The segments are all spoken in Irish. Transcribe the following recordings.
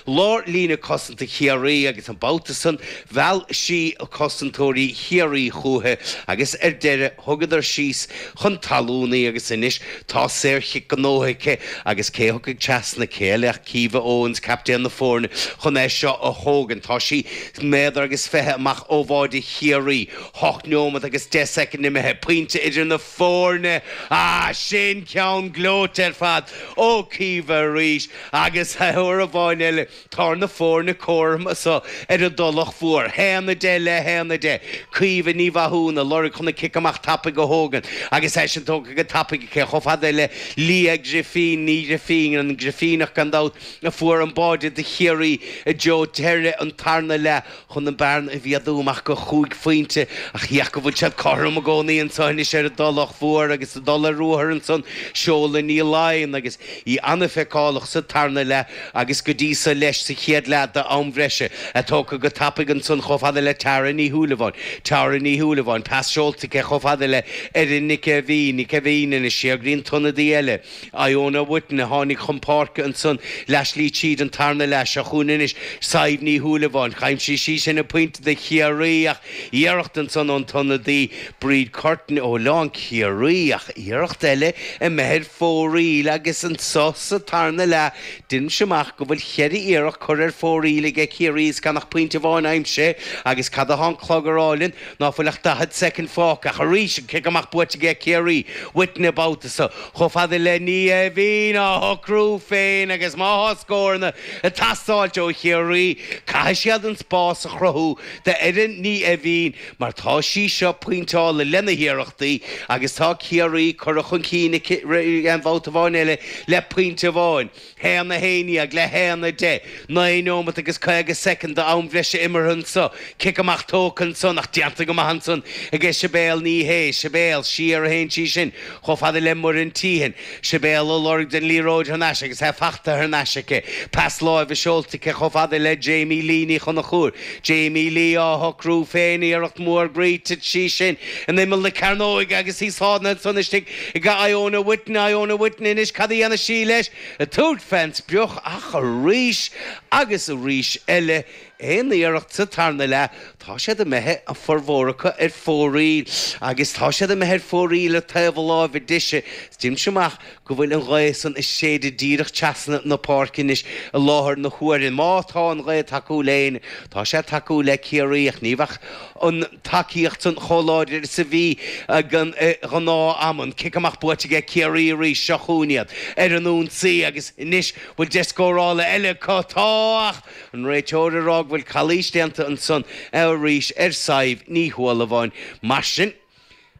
Lár líne cosanta Chiarraí agus an babhta san mheall sí cosantóirí Chiarraí chúiche agus ar deireadh thugadar síos chun talún í agus anois tá saor chic gnótha aici agus cé atá tagtha trasna céile ach Caoimhe Owens, captaen na foirne, chun é seo a thógaint. Tá sí méadar agus fiche amach ó bháide Chiarraí, hocht neomat agus deich soicind imithe, pointe idir na. foirne. Á, sin ceann gleoite ar fad! Ó Chaoimhe arís agus uair amháin eile tá na foirne cothrom anso ar an dTulach Mhór. Haon a deich le haon a deich. Caoimhe Ní Mhathúna, lorg chun an cic amach tapaidh a thógaint agus é sin tógtha go tapaidh aici chomh fada le Liadh Grifín, Ní Ghrifín, an Grifíneach gan dabht, a fuair an báide do Chiarraí i dtreo deireadh an tarna leath. chun an bearna a mhéadú amach go chúig phointe, ach ní hea, táid siad cothrom i gcónaí anso anois ar an dTulach Mhór agus ag dul ar ruathar ansan seoladh Ní Laighin agus í an-fheiceálach sa tarna leath agus go dtí so leis sa chéad leath d'am bhreise, é tógtha go tapaidh ansan chomh fada le Tara Ní Shúilleabháin Tara Ní Shúilleabháin, pas seolta aici chomh fada le Erin Nic Aibh Aoidh Nic Aibh Aoidh, ina síograí an t-ionadaí eile. Iona Witten a tháinig chun páirce ansan leath slí tríd an tarna leath. Seo chugainn anois Sadhbh Ní Shúilleabháin. D'aimsigh sí sin an pointe do Chiarraí ach iarracht ansan ón t-ionadaí, Bríd Curtin, ó lán Chiarraí ach iarracht eile imithe ar fóraoil agus anso sa tarna leath deinimse amach go bhfuil cheithre iarracht curtha ar fóraoil aige Ciarraí is gan ach pointe amháin aimsithe agus cad atá an clog a rá linn? Ná fuil ach daichead soicind fágtha, ach arís an cic amach buaite aige Ciarraí, Witten an babhta so chomh fada le Ní Aoibhinn á shocrú féin agus má thá scóranna ag teastáilt ó Chiarraí, caithfidh siad an spás a chruthú d'Erin Ní Aoibhinn mar tá sí seo pointeáilte lena hiarrachtaí agus tá Ciarraí curtha chun cinn aici aon bhabhta amháin eile le pointe amháin. haon a haon dhéag le haon a deich, naoi neomat agus caoga soicind d'am bhreise imeartha anso, cic amach tógtha ansan, ach déanta go maith ansan aige Sibéal Ní Shé, Sibéal, siar a théann sí sin, chomh fada le Muireann Teehan, Sibéal ag lorg den liathróid thar n-ais agus é fachta thar n-ais aici, pas láimhe seolta aici chomh fada le Jamie Lee Ní Chonchúir, Jamie Lee á shocrú féin, iarracht mhór gur thit sí sin in imeall na cearnóige agus í sáinnithe ansan istigh Ag Iona Whitten, Iona Whitten, anois, cad a dhéanfaidh sí leis? Ag tabhairt fén sprioc ach arís agus arís eile, aon iarracht sa tarna leath, tá siad imithe, a bhformhór acu, ar fóraoil. Agus tá siad imithe ar fóraoil ar taobh na láimhe deise. Deinimse amach go bhfuil an ghaoth san ag séideadh díreach trasna na páirce anois i láthair na huaire. Má tá an ghaoth ag tacú le héinne, tá sé ag tacú le Ciarraí ach ní bheadh an tacaíocht sin chomh láidir is a bhí ag an ngnáth-am, an cic amach buaite aige Ciarraí arís, seo chugainn iad ar an ionsaí agus anois bhuel deis scórála eile acu, tá ach an réiteoir ag rá go bhfuil calaois déanta ansan arís ar Sadhbh Ní Shúilleabháin. Mar sin,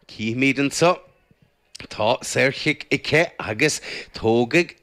cífimid anso. Tá saorchic aici agus tógfaidh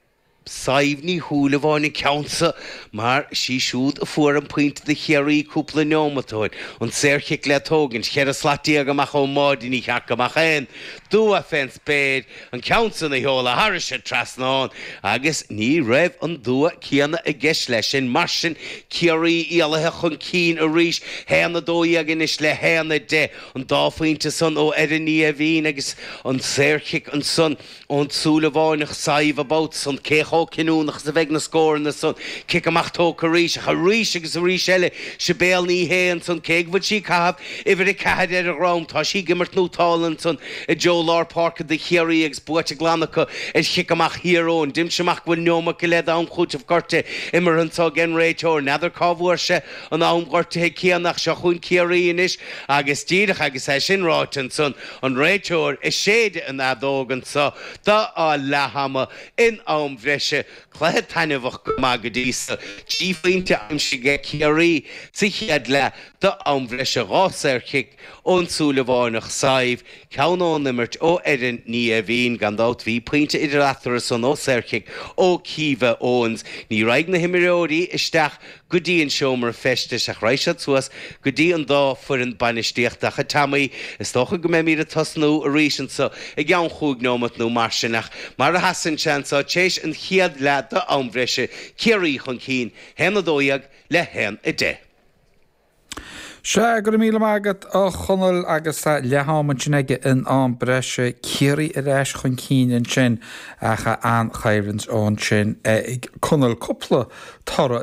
Sadhbh Ní Shúilleabháin an ceann so mar sí siúd a fuair an pointe do Chiarraí cúpla neomat ó shin. An saorchic le tógaint, cheithre slat déag amach ón mbáide, ní cheart go mbeadh aon dua fén spéir an ceann san a sheoladh thairis an trasnán agus ní raibh an dua céanna i gceist leis sin. Mar sin Ciarraí éalaithe chun cinn arís, haon a dó dhéag anois le haon a deich. An dá phointe san ó Erin Ní Aoibhín agus an saorchic ansan ón tSúilleabháineach Sadhbh gan dabht ansan, cé chomh cinniúnach is a bheidh na scóranna san? Cic amach tógtha arís, ach arís agus arís eile, Sibéal Ní Shé ansan, cé go bhfuil sí ag caitheamh uimhir a ceathair ar a dhrom, tá sí ag imirt nútála ansan i dtreo lár páirce do Chiarraí agus buaite glan acu ar chic amach Thír Eoghain. Deinimse amach go bhfuil neomat go leith d'am chúiteamh gortuithe imeartha anso ag an réiteoir. N'fheadar cá bhfuair sé. an am gortuithe céanna ach seo chugainn Ciarraí anois agus díreach agus é sin ráite ansan an réiteoir ag séideadh an fheadóg anso d'fháil leath ama in am bhreise cluiche taitneamhach go maith go dtí so. Trí phointe aimsithe ag Ciarraí sa chéad leath d'am bhreise, dhá saorchic ón Súilleabháineach Sadhbh, ceann ón imirt ó Erin Ní Aoibhín, gan dabht bhí pointe idir eatarthu san ó saorchic ó Keeva Owens. Ní raghaidh na himreoirí isteach go. go dtí an seomra feistis ach raghaidh siad suas go dtí an dá foireann bainistíochta ach, a Teaimí, is dócha go mbeimíd ag tosnú arís anso i gceann chúig neomat nó mar sin ach, mar a sheasann sé anso, téis an chéad leath d'am bhreise, Ciarraí chun cinn, haon a dó dhéag le haon a deich. Sea, go raibh míle maith agat, a Chonaill agus tá leath-am ansin aige in am breise, Ciarraí ar ais chun cinn ansin ach an-choimhlint ansin ag Conall, cúpla toradh,